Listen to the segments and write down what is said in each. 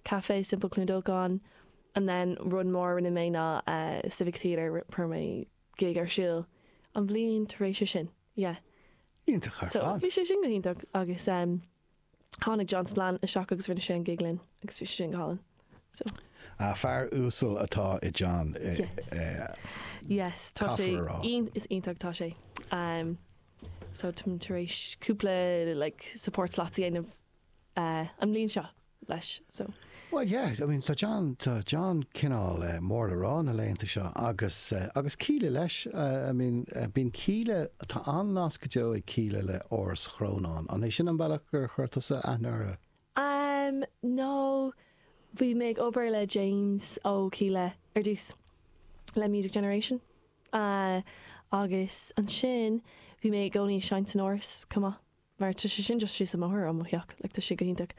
Café Sin Cluain Dolcáin and then rud mór a rinne mé ná Civic Theatre chuir mé gig ar siúl an bhliain tar éis sin yeah. Iontach ar fad. So bhí sé sin go hiontach agus em tháinig John Spillane isteach agus rinne sé an gig linn agus bhí sé sin go hálainn so. Ah fear uasal atá i John Yes tá sé is iontach tá sé em so tar éis cúpla like support slots a dhéanamh an bhliain seo leis so. Bhuel yeah, I mean tá John, tá John cineál mór le rá na laethanta seo agus, agus Kíla leis, I mean bíonn Kíla, tá an-nasc go deo ag Kíla le Áras Chrónáin, an é sin an bealach gur chuir tusa aithne orthu? Umm no, bhí mé ag obair le James ó Kíla ar dtús le Music Generation agus ansin bhí mé i gcónaí ag seinnt san Áras chomh maith. Mar tá sé sin just síos an bóthar ó mo theach, like tá sé go hiontach.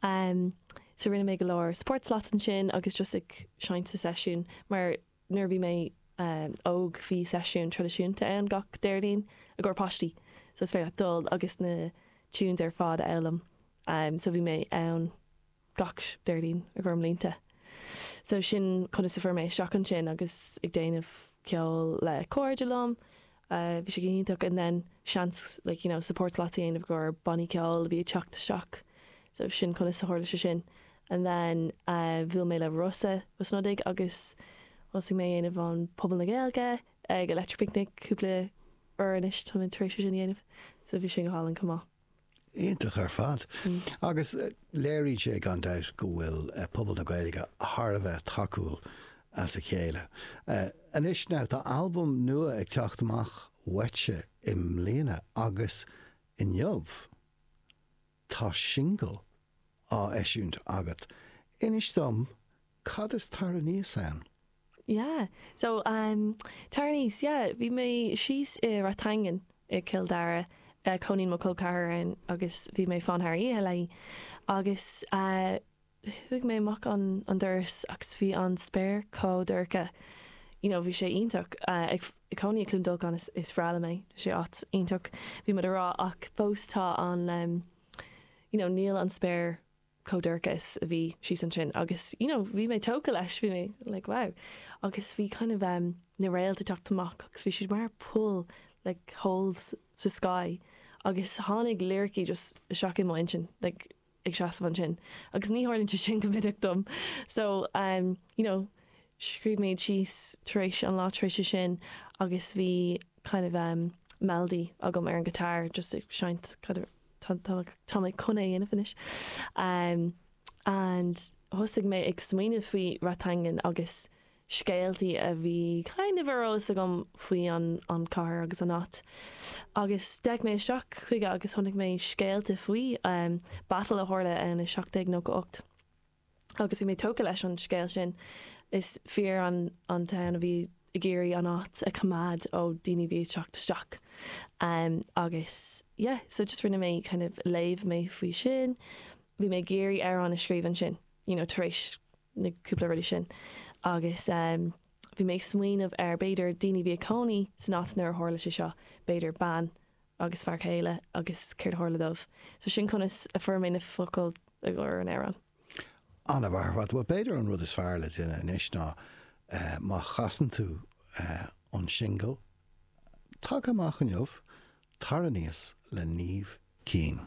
Em so rinne mé go leor support slots ansin agus just ag seinnt sa seisiún mar nuair a bhí mé em óg bhí seisiún traidisiúnta ann gach Déardaoin i gcomhair páistí so is féidir leat dul agus na tunes ar fad a fhoghlaim em so bhí mé ann gach Déardaoin i gcomhair blianta. So sin conas a fuair mé isteach ansin agus ag déanamh ceoil le cairde liom, bhí sé go hiontach and then seans like you know support slot a dhéanamh i gcomhair bannaí ceoil a bhí ag teacht isteach. So sin conas a tharla sé sin and then bhuail mé le Rossa Ó Snodaigh agus thosaigh mé a dhéanamh an Puball na Gaeilge ag Electric Picnic cúpla uair anois tá mé tar éis é sin a dhéanamh so bhí sin go hálainn chomh maith. Iontach ar fad. Agus léiríonn sé gan dabht go bhfuil pobal na Gaeilge thar a bheith tacúil dá chéile. Anois now, tá albam nua ag teacht amach uait i mbliana agus inniu tá singil á heisiúint agat. Inis dom Cad is Tar Aníos ann? Yeah, so um Tar Aníos yeah bhí mé síos i Rathangan i gCill Dara cónaíonn mo chol ceathar ann agus bhí mé ag fanacht thar oíche léi agus chuaigh mé amach an an doras agus bhí an spéir chomh dorcha you know bhí sé iontach ag cónaí i gCluain Dolcáin is is breá liom é tá sé áit iontach bhí muid ag rá ach fós tá an you know níl an spéir chomh dorcha is a bhí síos ansin agus you know bhí mé tógtha leis bhí mé like wow agus bhí kind of um na réalta ag teacht amach agus bhí siad mar poill like holes sa sky agus tháinig liricí just isteach i mo intinn like ag seasamh ansin agus ní tharlaíonn sé sin go minic dom so um you know scríobh mé síos tar éis an lá tar éis sin agus bhí kind of um melody agam ar an guitar just ag seinnt kind of tá mé chun é a dhéanamh anois and thosaigh mé ag smaoineamh faoi Rathangan agus scéaltaí a bhí kind of ar eolas agam faoi an, an chathair agus an áit agus d'fhéach mé isteach chuige agus chonaic mé scéalta faoi em battle a tharla ann i seacht déag nócha ocht. agus bhí mé tógtha leis an scéal sin. Is fir an town a bhí ag iarraidh an áit a choimeád ó daoine a bhí ag teacht isteach em agus yeah so just rinne mé kind of léigh mé faoi sin. Bhí mé ag iarraidh amhrán a scríobh ansin you know tar éis na cúpla rudaí sin agus em bhí mé ag smaoineamh ar b'fhéidir daoine a bhí ag cónaí san áit nuair a tharla sé seo b'fhéidir bean agus fear céile agus céard a tharla dóibh. So sin conas a fuair mé na focail i gcomhair an amhráin. An-mhaith ar fad, bhuel b'fhéidir an rud is fearr le déanamh anois ná má chasann tú an singil tagtha amach inniu, Tar Aníos le Niamh Keane.